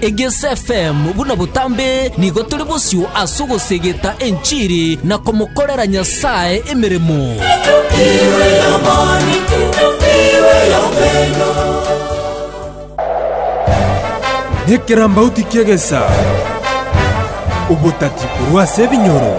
EgesFm buna botambe nigo tore bosio ase ogosegeta enchiri na komokorera Nyasae emeremo. Nekerambauti ki'egesaa, obotati korwa ase ebinyoro.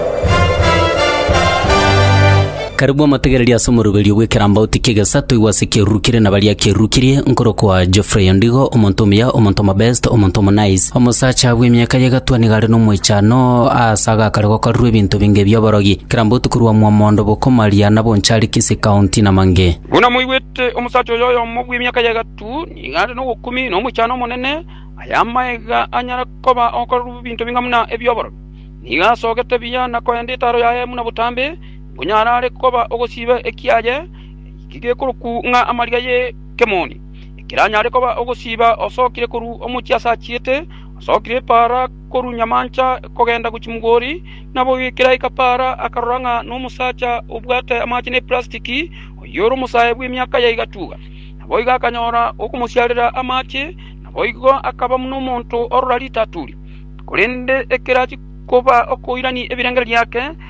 Karabua amategereria ase omoroberio bw'ekerambauti ki'egesato igwa ase ekeruru kere na baria kerukirie, nkorokwa Geoffrey Ondigo, omonto omuya, omonto omobest, omonto omonice, omosacha bw'emiaka y'egatwa nigo are nomoichano aase agakare gokorerwa ebinto binge bi'oborogi, kerambauti korwa Mwamondo, Bokomaria, na Bonchari, Kisii County, na mang'e. Buna moigwete, omosacha oyo oyomo bw'emiaka y'egatwa nigo are nobokumi na omoichano omonene, aye amaiga anyare koba ogokorerwa ebinto binge buna ebi'oborogi. Nigo asogete buya na koenda etaro yaye buna botambe, Onye arare koba ogosiba ekiaye gekorokwa ng'a amariga y'ekemoni, ekeranyare koba ogosiba osokire korwa omochie ase achiete, osokire epaara korwa nyamancha kogenda gochia mogori, naboigo ekeraika paara akarora ng'a nomosacha obwate amache ne plastiki, oyio ore omosae bw'emiaka ya egatuga. Naboigo akanyora okomosiarera amache, naboigo akaba buna omonto orora ritaturi. Korende ekero achia koba okoirania ebirengererio biake,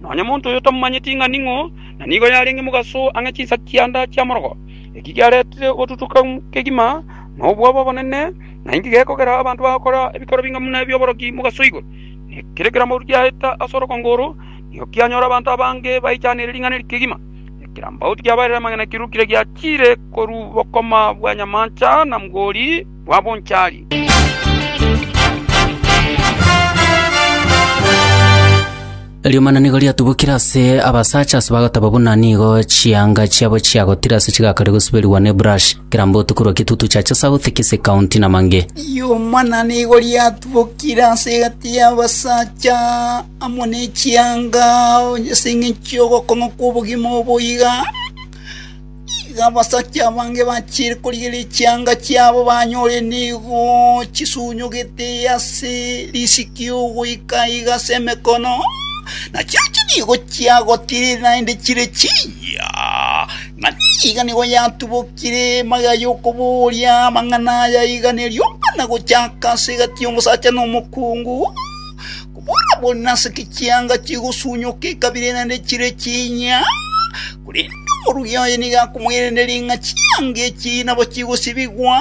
Nonya monto oyo tamomanyeti ng'a ning'o, na nigo yarenge mogaso ang'e chinsa chianda chi'amorogo. Eki kiaretire ogotutuka kegima na obwoba obonene, na inki gekogera abanto bagokora ebikoro binga buna ebi'oboroki mogaso igoro? Ekero ekerambe giaeta ase orogongo oro, nigo kianyora abanto abange baichanire ring'ana eri kegima. Ekerambaoti kiabaeire amang'ana kirurukire giachiire korwa bokoma bwa nyamancha na mgori, bwa bonchari. Riomana nigo riatubokire ase abasacha ase bagoteba buna nigo chianga chiabo chiagotire ase chigakare gosuberigwa ne brush kera mbotu korwa Kitutu Chacha South, Kisii County na Mange. Riomana nigo riatubokire ase egati y'abasacha amo n'echianga onye ase eng'encho y'ogokong'a kw'obogima oboiga Igo abasacha abange bachiire korigereria chianga chiabo banyore nigo chisunyugete ase risiki ogoika iga ase emekono, na chirochio nigo chiagotire naende chire chiiyia, ng'a nigo nigo yatubokire magega y'okobooria amang'ana aya iga ne rioka na gochaka ase egati y'omosacha na omokungu, kobora buna ase echianga chigosunyuka ekabire naende chire chiiyia. Korende omorugi oye nigo akomoiraneria ng'a chianga echi nabo chigosibigwa,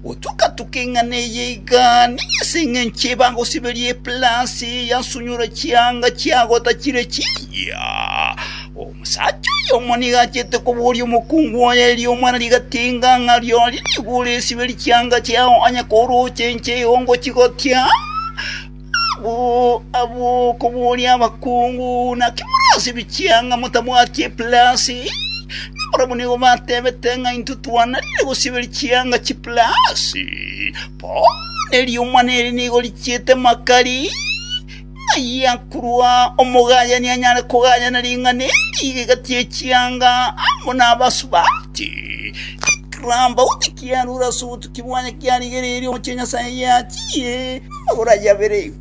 gotuka-tuka ing'ana eye iga, nigo ase engencho eye bagosiberia epilasi yasunyora chianga chiago tachire chiria. Omosacha oyomo nigo achete koboria omokungu oye erio omwana rigatinga ng'a, Rirorio nigo oresiberie chianga chiao onye korooche inche igo ngochigotia? Abwo okobooria abakungu, Naki morasibie chianga motabwati epilasi? Nabarabwo nigo batebete ng'a intwe twananire gosiberia chianga chipilasi. Bono eriomwana eri nigo richiete makari. Ng'ai akorwa omogayani anyare kogayana ring'ana eri egati ye chianga amo nabasubati? Ekerambauti kiarure ase obotuki bwaye kiarigereire omochie Nyasaye yachie. Oboraiyo abere igo.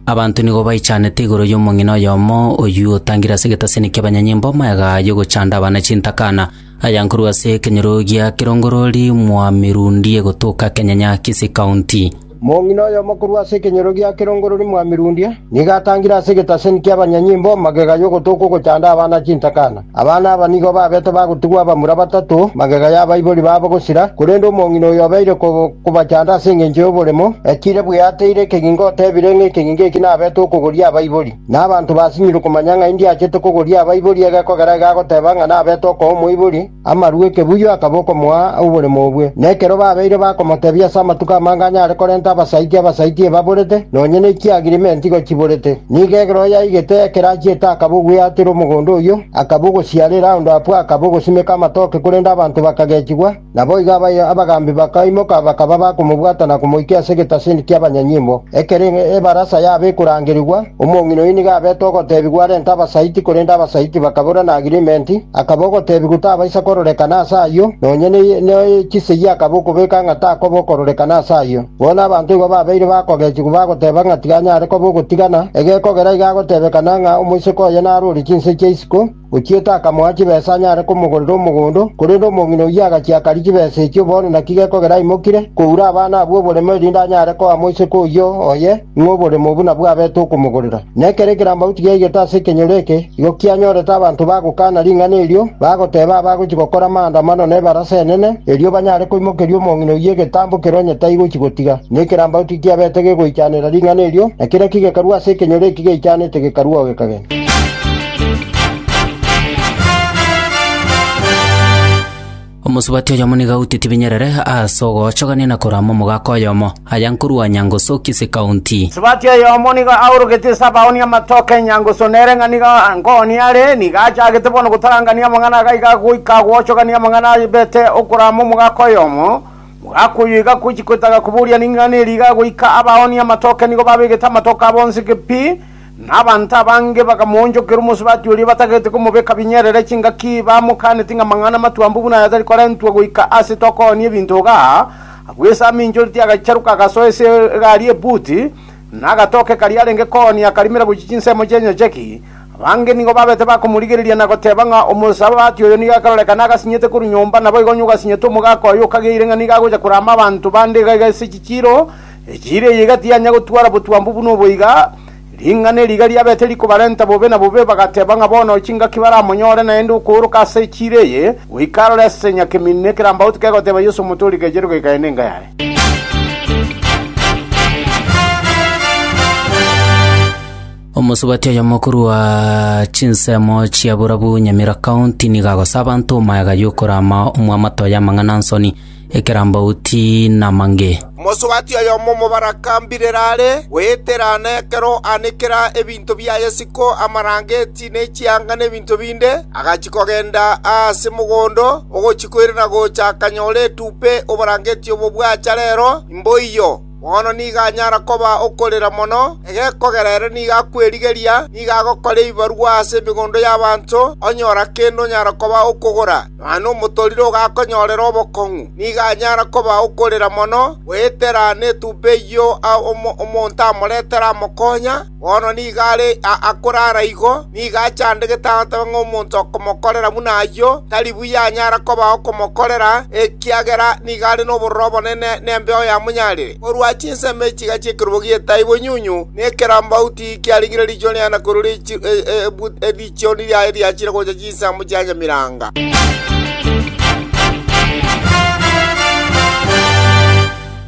Abanto nigo baichanete igoro y'omong'ina oyomo, oyio otangire ase egetasini ki'abanyanyimbo amayaga y'ogochanda abana chintakana, aya nkorwa ase ekenyoro gia Kirongorori mwa Mirundi egotoka Kenyanya Kisii County. Mong'ina oyomo korwa ase ekenyoro gia kerongorori mwamirudia, nigo atangire ase egetaseni ki'abanyanyimbo magega y'ogotoka ogochanda abana chintakana. Abana aba nigo babete bagotigwa abamura batato magega y'abaibori babo gosira, korende omong'ina oyo obeire kobachanda ase engencho y'oboremo, ekire bweateire ekegingo otebire ng'a ekegingo eki nabete okogoria abaibori. Na abanto basinyirwe komanya ng'a indi achete kogoria abaibori egekogera iga agoteba ng'a nabete okoa omoibori, Amaru ekebuyo akaba okomoa oboremo obwe, na ekero babeire bakomotebia ase amatuko amange anyare korenta abasaiti abasaiti ebaborete, nonya ne chiagirimenti igo chiborete, nigo ekero yaigete ekero achiete akaba ogweatera omogondo oyio, akaba ogosiara eraundo abwo akaba ogosimeka amatoke korende abanto bakagechigwa, naboigo abaye abagambi bakaimoka bakaba bakomobwata na komoikia ase egetasini ki'abanyanyimbo, ekero ebarasa yabo ekorangerigwa, omong'ina oyio nigo abete ogotebigwa arente abasaiti korende abasaiti bakabora na agirimenti, Akaba ogoteebigwa otabaisa kororekana ase ayio, nonya ne chisegi akaba okobeka ng'a takoba okororekana ase ayio. Bono abanto igo babeire bakogechigwa bagoteba ng'a tiga anyare koba ogotigana, egekogera iga agotebekana ng'a omoiseke oye naro ore chinse chia isiko, ochiete akamoa chibesa anyare komogorera omogondo, korende omong'ina oyio agachia akaria chibesa echio, bono naki gekogera aimokire koura abana abwo oboremo erinde anyare koa moiseke oyio oye. ng'a oborimo obo nabwo abete okomogorera. Na ekero ekerambamu tigiaigete ase ekenyoro eke, igo kianyorete abanto bagokana ring'ana erio, bagoteeba abagochia gokora amaandamano nebarase enene, erio banyare koimokeria omong'ina oyio egetambo ekero onye taigochia gotiga. Na ekerambamu tikiabete gegoichanera ring'ana erio, na kera kigekarwa ase ekenyoro eki geichanete gekarwa oo gekagenda. Omosubati oyomo nigo aute tibinyerere ase ogochogania na korama omogaka oyomo, aya nkorwa Nyangusu Kisii County. Omosubati oyomo nigo aoroketie ase abaoonia amatoke Nyangusu nere ng'a nigo nkoonia are, nigo achagete bono gotarangania amang'ana aga iga goika gochogania amang'ana abete okorama omogaka oyomo. Mogaka oyo iga agochia koetaga koboria ring'ana eri iga goika abaoonia amatoke nigo babegete amatoke abo inse pi. Na abanto abange bakamoonchokera omosubati oria batagete komobeka binyerere chingaki, bamokanetie ng'a amang'ana amatwambe buna aya tari korentwa goika ase tokoonia ebinto iga. Agwo Yeso aminchoreti agacharuka agasoa ase egari ebuti, na agatoka ekari arenge koonia akarimera gochia chinsemo chi'enyocheki. Abange nigo babete bakomorigereria na goteba ng'a omosabati oyo nigo akarorekana agasinyete korwa nyomba, naboigo onye ogasinyete omogaka oye okageire ng'a nigo agocha korama abanto bande iga iga ase chichiiro, Echiira eyio iga tianya gotwara botwambu buna obo iga. Ring'ana eri iga riabete rikobarenta bobe na bobe, bagateba ng'a bono chingaki baramonyore naende okooroka ase echiira eye goika aroro ase nyakemini, ne ekerambaoto kegoteba Yeso omotori kechere goika aye nenga yaye. Omosubati oyomo korwa chinsemo chia Burabu Nyamira County nigo agosa abanto omoeaga yokorama omwamato y'amang'ana nsoni. ekerambauti namange. Omosubati oyomo omobaraka mbirire are, goetera na ekero aanekera ebinto biaye isiko, amarangeti, ne chianga, ne ebinto binde, agachia kogenda aase mogondo ogochia koirana gocha akanyora etupe oborangeti obo bwacha rero imboiyo. Bono nigo anyara koba okorera mono, egekogera ere nigo akwerigeria, nigo agokora ebibarwa ase emegondo y'abanto, onyora kende onyara koba okogora, nonya nomotorire ogakonyorera obokong'u. Nigo anyara koba okorera mono, goetera netumba eyio omonto amoretere amokonya, Bono nigo are aa korara igo, nigo achandegete agateba ng'a omonto okomokorera buna ayio tari buya anyara koba okomokorera, ekiagera nigo are nobororo obonene nembeyo ya monyarire. Korwa chinsemo echiga chi'ekerogo gi'etaa ibonyunyu na ekerambauti kiarengire riicho riane korwa erichioni riaye riachire gocha chinsemo chia nyamiranga.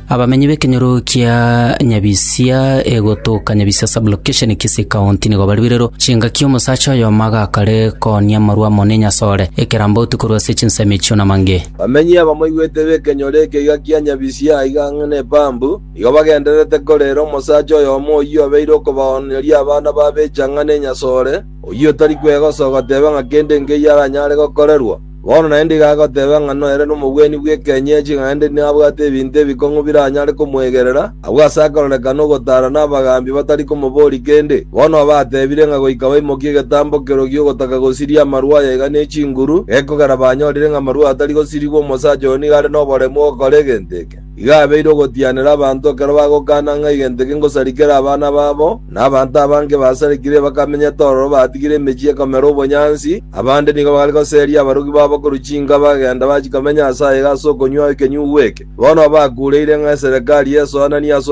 Abamenyi b'ekenyoro kia Nyabisia egotoka Nyabisia Sub-location Kisii County nigo bariberero chingaki omosacha oyomo agakare koonia amarwa amo n'enyasore ekerambauti korwa ase chinsemo echio namange. Bamenyi abamoigwete b'ekenyoro ekegiga kia Nyabisia aiga ang'e n'epampu, nigo bagendererete korera omosacha oyomo oyio obeire okobaoneria abana b'abechang'a n'enyasore, oyio otari kwegosogoteba ng'a kende nkeiyo aranyare gokorerwa. Bono naende iga agoteba ng'a noere nomobweni bw'ekeny'echi naende nabwate ebinto ebikong'u biranyare komwegerera, agwo ase akorerekana ogotaara n'abagaambi batari komoboria kende. Bono aba atebire ng'a goika baimokie egetambo kerogi gi'ogotaka gosiria amarwa aya iga ne chinguru, gekogera banyorire ng'a amarwa aya tari gosirigwa omosacha oyo nigo are noboremu ogokora egento eke. Igo abeire ogotianera abanto ekero bagokana ng'a egento eke ngosarikere abana babo, na abanto abange basarikire bakamenyete ororo batigire emechie ekomera obonyansi, abande nigo bare goseria abarugi babo korwa chinka bagenda bachia komenya ase aye ase okonywa ekenyugwa eke. Bono bakureire ng'a eserekari esoananie ase